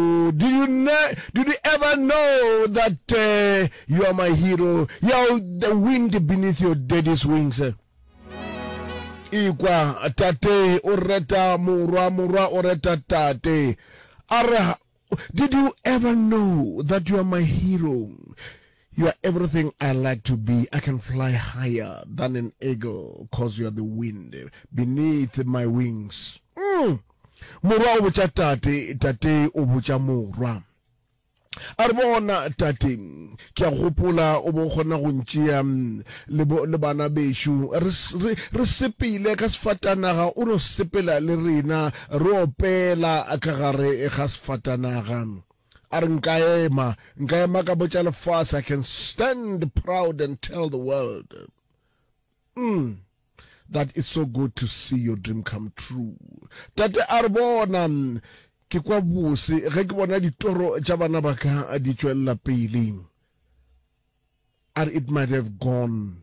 Did you ne did you ever know that uh, you are my hero ya the wind beneath your daddy's wings ikwa tate o reta morwa morwa o reta tate a re did you ever know that you are my hero You are everything I like to be, I can fly higher than an eagle cause you are the wind beneath my wings. Mm. Morwa o botša tate, tate o botša morwa. A re bona tate, ke a gopola o bo kgona go ntšea le, bo, le bana bešo re, re, re sepele ka sefatanaga, o no sepela le rena re opela ka gare ga sefatanaga. A re nka ema, nka ema ka botša lefase, I can stand proud and tell the world mm, that it's so good to see your dream come true. Tate a re bona, ke kwa bose ge ke bona ditoro tša bana ba ka di tšwelela pele. A re it might have gone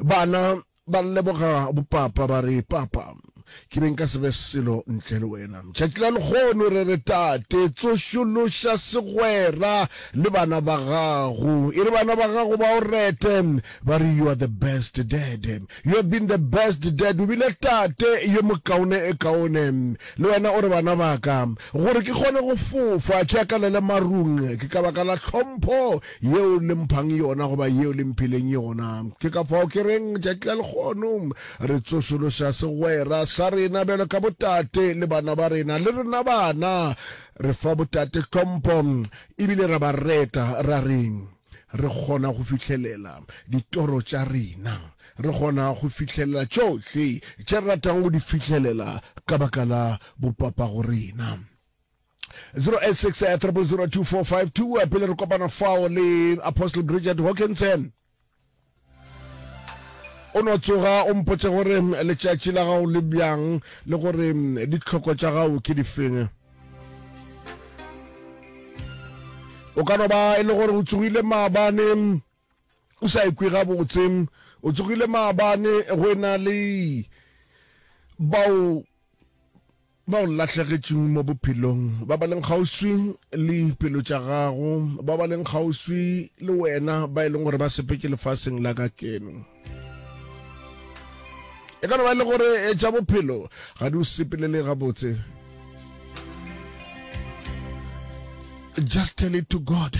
Bana ba leboga bopapa ba re, Papa, ke be nka se be selo ntle le wena. Tšatši la lekgono re re, Tate, tsošološa segwera le bana ba gago. E re bana ba gago ba o rete, ba re, You are the best dad. You have been the best dad. O bile tate yo mokaone e kaone. Le wena o re, Bana ba ka, gore ke kgone go fofa ke akalele marung, ke ka baka la tlhompho Yeo le mphang yona goba yeo le mphileng yona. Ke ka fao ke reng, tšatši la lekgono, re tsošološa segwera sa rena bjalo ka botate le bana ba rena. Le rena bana re fa botate tlhompho e bile ra ba reta, ra re, Re kgona go fihlelela ditoro tša rena. Re kgona go fihlelela tšohle tše re ratang go di fihlelela ka baka la bopapago rena. 086 pele re kopana fao le apostle bridget hawkins o no tsoga o mpotse gore letšatši la gago le bjang le gore ditlhoko tša gago ke difeng o ka no ba e le gore o tsogile maabane O sa ikwe gabotse, o tsogile maabane go e na le bao ba o lahlegetšeng mo bophelong ba ba leng kgauswi le pelo tša gago ba ba leng kgauswi le wena ba e leng gore ba sepetše lefaseng la ka keno e ka no ba e le gore e tša bophelo ga di o sepelele gabotse just tell it to god